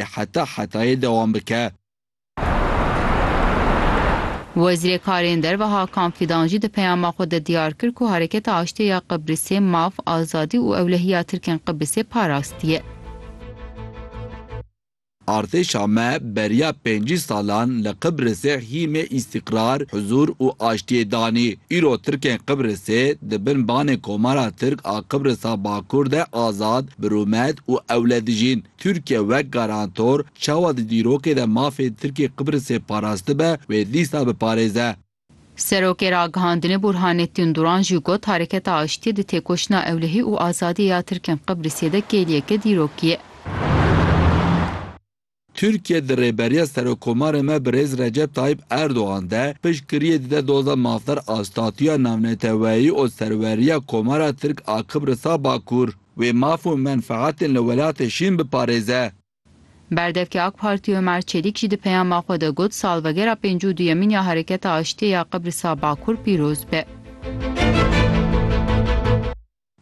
ê heta hetayê dewam bike. Wezîrê Karên Derve Hakan Fîdan jî di peyama xwe de diyar kir ku Hereketa Aştiyê ya Qibrisê maf, azadî û ewlehiya Tirkên Qibrisê parastiye. Artêşa me beriya pêncî salan li Qibrisê hîmê îstîqrar, huzûr û aştiyê danî. Îro Tirkên Qibrisê di bin banê Komara Tirk a Qibrisa Bakur de azad, bi rûmet û ewle dijîn. Tirkiye wek garantor çawa di dîrokê de mafên Tirkê Qibrisê parastibe wê dîsa biparêze. Serokê Ragihandinê Burhanettin Duran jî got Hareketa Aştiyê di têkoşîna ewlehî û azadiyê ya Tirkên Qibrisê de kêliyeke dîrokî ye. Tirkiye di rêberiya Serokomarê me Birêz Recep Tayîp Erdogan de piştgiriyê dide doza mafdar a Statuya Navneteweyî û serweriya Komara Tirk a Qibrisa Bakur. Wê maf û menfeatên li welatê şîn biparêze. Berdevkê AK Partî Omer Çelîk jî di peyama xwe de got, Salvegera pêncî û duyemîn ya Hereketa Aştiyê ya Qibrisa Bakur pîroz be.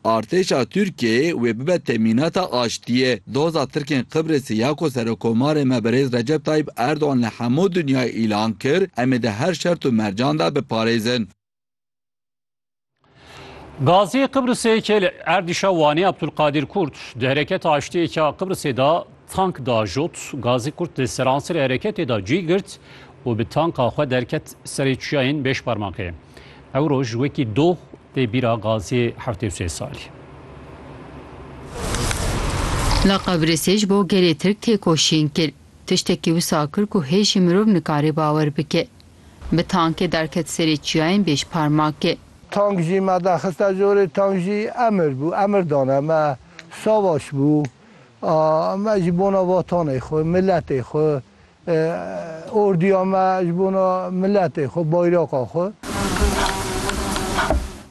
Artêşa Tirkiyeyê wê bibe temînata aştiyê. Doza Tirkên Qibrisê ya ku Serokomarê me Birêz Recep Tayîp Erdogan li hemû dinyayê îlan kir, em ê di her şert û mercan de biparêzin. Gaziyê Qibrisê yekê li erdîşa Wanê Abdulkadir Kurt di hereketa aştiyêka Qibrisê de tank da jot. Gazî Kurt di seransirê hereketê de cî girt û bi tanka xwe derket serê çiyayên Bêşparmakê. Ew roj wekî doh tê bîra gaziyê heftê û sê salî. Li Qibrisê ji bo gelê Tirk têkoşîn kir. Tiştekî wisa kir ku hêj jî mirov nikare bawer bike. Bi tankê derket serê çiyayên bêşparmakê. Tank jî me derxiste jorê, tank jî emir bû, emir dane me. Savaş bû. Me ji bona vatanê xwe, miletê xwe, orduya me ji bona miletê xwe, bayraka xwe.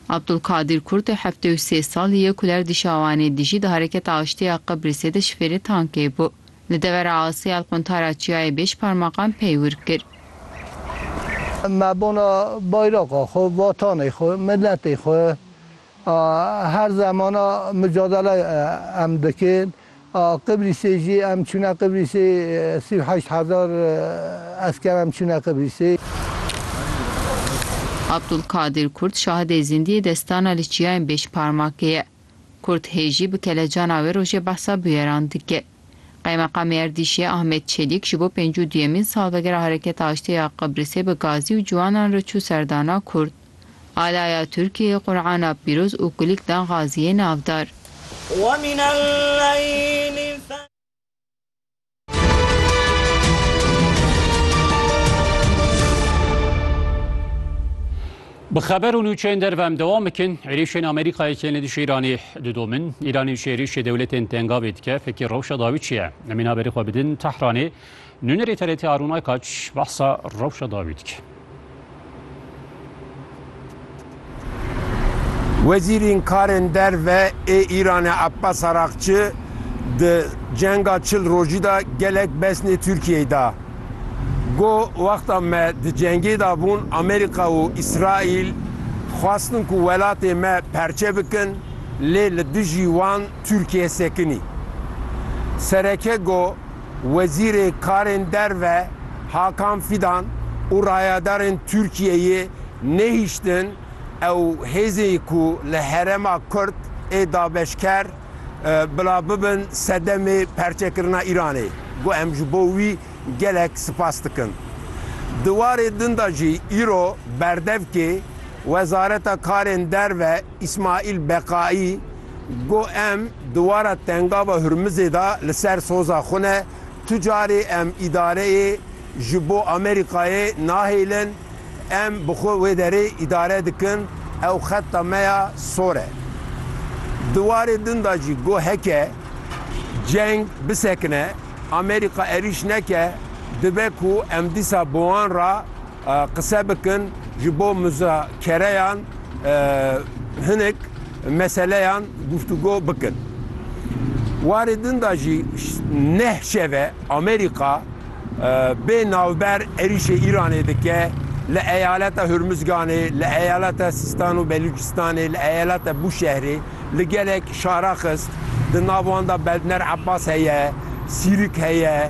Abdulkadîr Kurt ê heftê û sê salî ye ku li Erdîşawanê dijî, di Hereketa Aştî ya Qibrisê de şifêrê tankê bû. Li devera Asiyal quntara çiyayê bêşparmaqan pey wir kir. Me bona bayraqa xwe, vatanê xwe, miletê xwe a her zeman a mucadele em dikin. A Qibrîsê jî em çûne Qibrîsê sî û heşt hezar esker em çûne Qibrîsê. Abdulkadir Kurt şahidê zîndî yê destana li çiyayên bêşparmakê ye. Kurd hêjî bi kelecana wê rojê behsa bûyeran dike. Qaymeqamê Erdîşê Ahmet Çelîk ji bo pêncî û duyemîn salvegera Hereketa Aştiyê ya Qibrisê bi gazî û ciwanan re çû serdana Kurd. Alaya Tirkiyeyê Qur'ana pîroz û kulîlk dan Gaziyê navdar. Bi xeber û nûçeyên derve em dewam bikin. Êrişên Amerîkayê kên li dijî Îranê didomin. Îranê ji êrişê dewletên tengavê dike. Fekî rewşa dawî çi ye? Emîn haberê xwe bidin Tehranê. Nûnerê TRT Arûn Aykaç behsa rewşa dawî dike. Wezîrên Karên Derve ê Îranê Abbas Araqçi di cenga çil rojî de gelek besnê Tirkiyeyê da. Got, Wexta me di cengê de bûn Amerîka û Îsraîl xwestin ku welatê me perçe bikin lê li dijî wan Tirkiye sekinî. Sereke got, Wezîrê Karên Derve Hakan Fidan û rayadarên Tirkiyeyê nehiştin ew hêzên ku li herêma Kurd ê dabeşker bila bibin sedemê perçekirina Îranê got em ji bo wî gelek sipas dikin. Di warê din de jî îro berdevkê Wezareta Karên Derve Îsmaîl Beqaî, Go em di wara Tengava Hurmizê de li ser soza xwe ne, tu carê em îdareyê ji bo Amerîkayê nahêlin, em bi xwe wê derê îdare dikin, ew xeta me ya sor e. Di warê din de jî go heke ceng bisekine, Amerîka erîş neke, dibe ku em dîsa bi wan re, Qise bikin ji bo muzakereyan hinek meseleyan guftûgo bikin. Warê din de jî neh şeve Amerîka bê navber êrîşê Îranê dike li eyaleta Hurmizganê, li eyaleta Sîstan û Belûcistanê, li eyaleta Bûşehrê li gelek şara xist. Di nav wan de Beldner Abbas heye, Sîrîk heye.